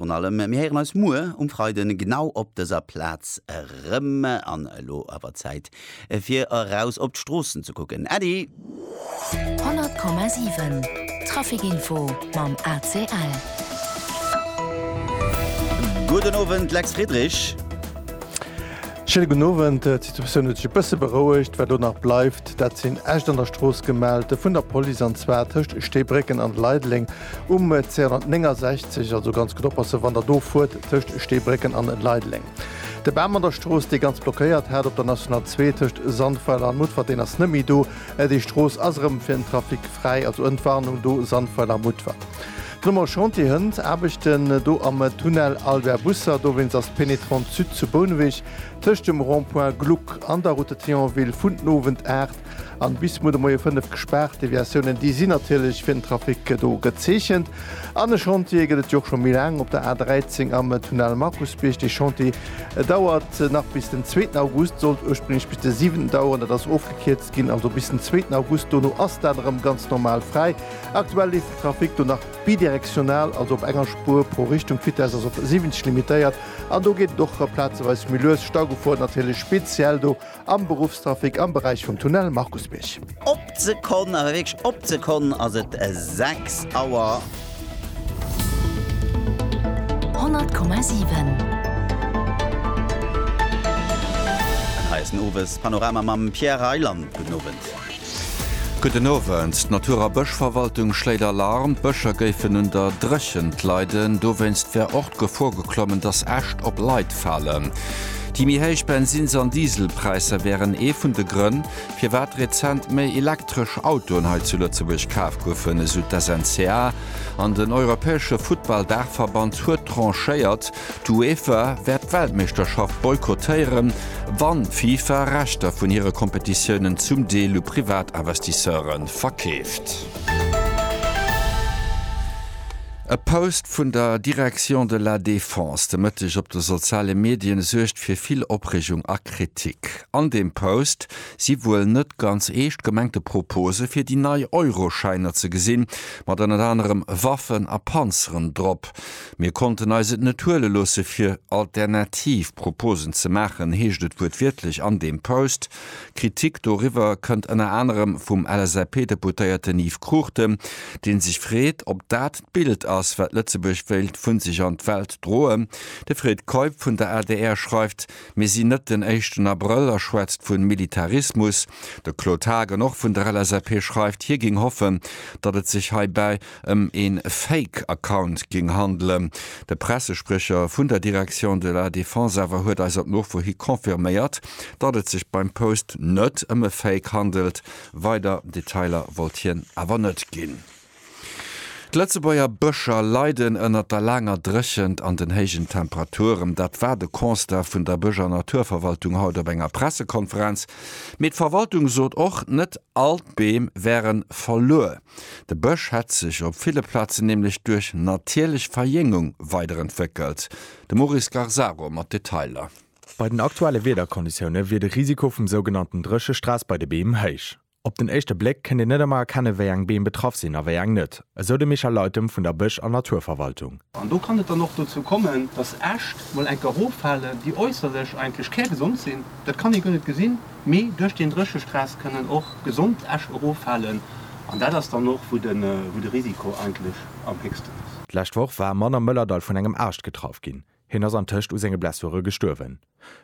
Virun allem, mir héieren eis muer um Freiden genau op dëser Plaz erëm. An elo awer Zäit fir eraus op d'Stroossen ze kucken, Äddi! 100,7 Traficinfo mam ACL. Gudden Owend, Lex Friedrich. Schéine gudden Owend. D'Situatioun huet sech e bësse berouegt. Wat elo nach bleift, dat sinn Äscht an der Strooss gemellt vun der Police, an zwar tëscht Steebrécken an Leideleng. Um 269, also ganz gutt oppassen, wann der do fuert, tëscht Steebrécken an Leideleng. De Bam an der Strooss, dee ganz blockéiert hat op der National 2 tëscht Sandweiler an Mutfert, deen ass net méi do. Déi Strooss ass erëm fir den Trafic fräi. Also Entwarnung do, Sandweiler, Mutfert. De Nummer Chantier hënt Aarbechten do am Tunnel Albert Busser. Dowéinst ass d'Pénétrante Sud zu Bouneweg tëscht dem Rond-point Gluck an der Route de Thionville vun den Owend 8 An bis muer de Moie 5 gespaart. D'Deviatiounen déi sinn natierlech fir den Trafic do gezeechent. An e Chantier gëtt et jo och scho méi laang op der A 13 am Tunnel Markusbierg. Dee Chantier dauert nach bis den zweeten August, sollt ursprénglech bis de 7 daueren. Dat ass ofgekierzt ginn, also bis den zweeten August. Dono ass dat erëm ganz normal fräi. Aktuell leeft den Trafic do nach bidirektional, also op enger Spuer pro Richtung. D'Vitess ass op 70 limitéiert an do geet et och plazeweis méi lues. Staugefor natierlech speziell do Am Beruffstrafic am Beräich vum Tunnel Markusbierg. Op d'Sekonn, awer wierklech op d'Sekonn ass et 6 Auer. 100,7. An hei ass den Owespanorama mam Pierre Reyland. Gudden Owend. Gudden Owend. D'Natur a Bëschverwaltung schléit Alarm, d'Bëscher géifen un der Dréchent leiden. Dowéinst wär och d'Gefor geklommen, dass Äscht op Leit falen. Déi méi héich Bensins an Dieselpräisser wären ee vun de Grënn, firwat rezent méi elektresch Autoen hei zu Lëtzebuerg kaf goufen, esou d'SNCA. An den europäesche Futtball-Daachverband huet tranchéiert. D'UEFA wäert d'Weltmeeschterschaft boykottéieren, wann d'FIFA Rechter vun hire Kompetitiounen zum Deel u Privatinvestisseure verkeeft. E Post vun der Direction de la Défense de Mëtteg op de soziale Medien suergt fir vill Opreegung a Kritik. An deem Post si wuel net ganz eescht gemengte Propose fir déi nei Euroschäiner ze gesinn, mat ënnert anerem Waffen a Panzeren drop. Mir konnten eis et net huele loosse fir alternativ Proposen ze maachen, heescht et wuertwiertlech an deem Post. Kritik doriwwer kënnt ënner anerem vum LSAP-Deputéierten Yves Cruchten, dee sech freet, ob dat d'Bild ass, wat Lëtzebuerg wéilt vu sech an d'Welt droen. De Fred Keup vun der adr schreift, Mir sinn net den éischten Abrëll a schwätzt vu Militarismus. De Claude Haagen, och vun der LSAP, schreift, hie géing hoffen, datt et sech heibäi ëm ee Fake Account géing handelen. De Pressespriecher vun der Direction de la Défense awer huet eis op Nofro hi confirméiert, datt et sech beim Post net ëm e Fake handelt. Weider Detailer wollt hien awer net ginn. D'Lëtzebuerger Bëscher leiden ënnert der laanger Dréchent an den héijen Temperaturen. Dat war de Constat vun der Bësch a Naturverwaltung haut op enger Pressekonferenz. Mee d'Verwaltung sot och, net all d'Beem wäre verluer. De Bësch hätt sech op ville Plazen nämlech duerch natierlech Verjéngung weiderentwéckelt. De Maurice Garzaro mat Detailer. Bei den aktuelle Wiederkonditioune wier de Risiko vum sougenannten Dréchestress bei de Beem héich. Op den éischte Bléck kënnt een net ëmmer erkennen, wéi eng Beem betraff sinn a wéi eng net, esou de Michel Leytem vun der Bësch an Naturverwaltung. An do kann et dann och dozou kommen, dass Äscht mol enker eroffalen, déi äusserlech eigentlech kärgesond sinn. Dat kann ee guer net gesinn. Mee duerch deen Dréchestress kënnen och gesond Äscht eroffalen an dat ass dann och, wou de Risiko eigentlech am héchsten ass. D'lescht Woch war e Mann am Mëllerdall vun engem Aascht getraff ginn. Hien ass antëscht u senge Blessure gestuerwen.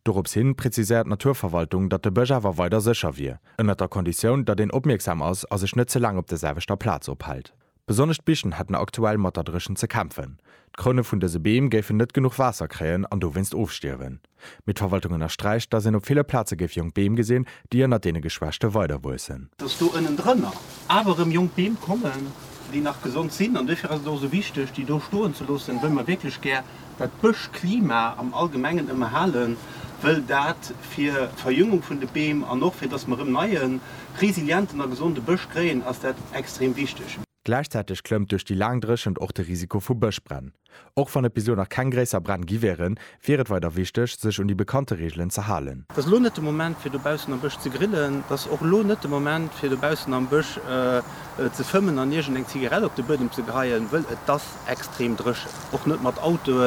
Dorops hin präziséiert d'Naturverwaltung, datt de Bësch awer weider sécher wier, ënnert der Konditioun, datt een opmierksam ass a sech net ze laang op der selwechter Plaz ophält. Besonnesch d'Bichen hätten aktuell mat der Dréchent ze kämpfen. D'Kroune vun dëse Beem géifen net genuch Waasser kréien an dowéinst ofstierwen. Mee d'Verwaltung ënnersträicht, datt een op ville Plaze géif jonk Beem gesinn, déi ënnert deene Geschwächte weiderwuessen. Datt do ënnendrënner awer erëm jonk Beem kommen, déi nach gesond sinn. An dofir ass et och esou wichteg, déi do stoen ze loossen, wëll mer wierklech gär dat d'Bëschklima am Allgemengen ëmmerhalen, wëll dat fir d'Verjüngung vun de Beem an och fir dass mer erëm neien, resilienten a gesonde Bësch kréien, ass dat extrem wichteg. Gläichzäiteg klëmmt duerch déi laang Dréchent och de Risiko vu Bëschbränn. Och wann et bis elo nach keng gréisser Bränn gi wären, wier et weider wichteg, sech un déi bekannte Reegelen ze halen. Et ass elo net de Moment fir dobaussen am Bësch ze grillen, et ass och elo net de Moment fir dobaussen am Bësch. ze fëmmen an iergend eng Zigarett op de Buedem ze geheien, wëll et ass extrem dréchen, och net mat Autoe.